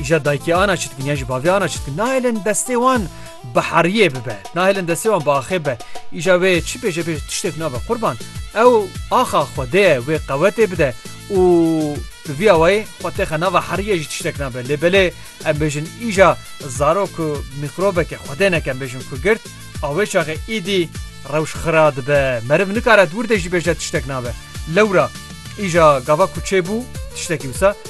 Îşa daykî ana çi dikin yan jî bavê ana çi dikin nahêlin destê wan bi heriyê bibe nahêlin destê wan bi axê be îşa wê çi pêşe pêş tiştêk nabe qurban ew axa xwedê ye wê qewetê bide û bi vî awayê xwe têxe nava heriyê jî tiştek nabe lê belê em bêjin îşa zarok ku mîkrobeke xwedê neke em bêjin ku girt awê çaxê îdî rewş xira dibe meriv nikare dûr de jî bêje tiştek nabe lewra îşa gava ku çêbû tiştekî wisa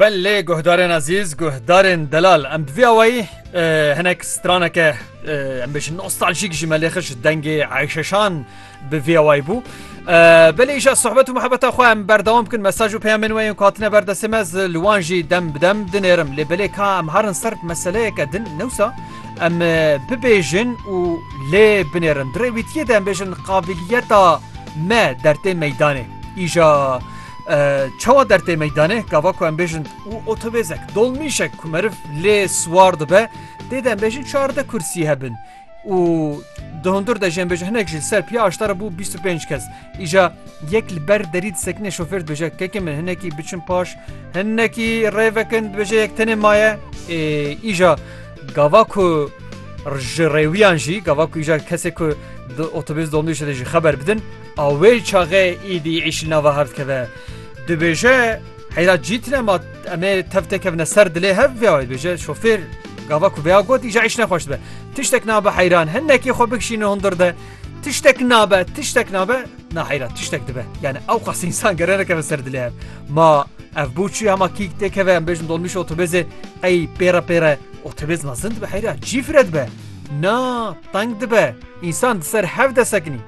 Belê guhdarên ezîz, guhdarên delal em bi vî awayî hinek straneke em bêjin nostaljîk ji me lê xij dengê Eyşeşan bi vî awayî bû. Belê îşa sohbet û muhebeta xwe em berdewam bikin mesaj û peyamên wê yên ku hatine ber destê me ez li wan jî dem bi dem dinêrim lê belê ka em harin ser meseleyeke din newsa em bibêjin û lê binêrin. Di rêwîtiyê de em bêjin qabiliyeta me dertê meydanê îşa Çawa dertê meydanê gava ku em bêjin û otobêzek dolmîşek ku meriv lê siwar dibe dê de em bêjin çarde kursî hebin û di hundur de jêmbêj hinek ji ser piya aştara bû 25 kes îja yek li ber derî disekinê şofêr dibêje kekê min hinekî biçin paş hinekî rêvekin dibêje yek tenê maye îja gava ku ji rêwiyan jî gava ku îja kesê ku di otobêz dolmîşê de jî xeber bidin A wê çaxê îdî îşîl nava hev dikeve. Dibêje heyra cî tine ma em ê tev tê kevne ser dilê hev vê wayê dibêje şofêr gava ku vêya got îja îş nexweş dibe. Tiştek nabe heyran hinekî xwe bikişîne hundir de tiştek nabe tiştek nabe na heyra tiştek dibe. Yani ew qas insan gerene keve ser dilê hev. Ma ev bû çi hema kîk tê keve em bêjin dolmîş otobêzê ey pêre pêre otobêz mezin dibe heyra cî fire dibe. Na teng dibe. İnsan di ser hev de sekinî.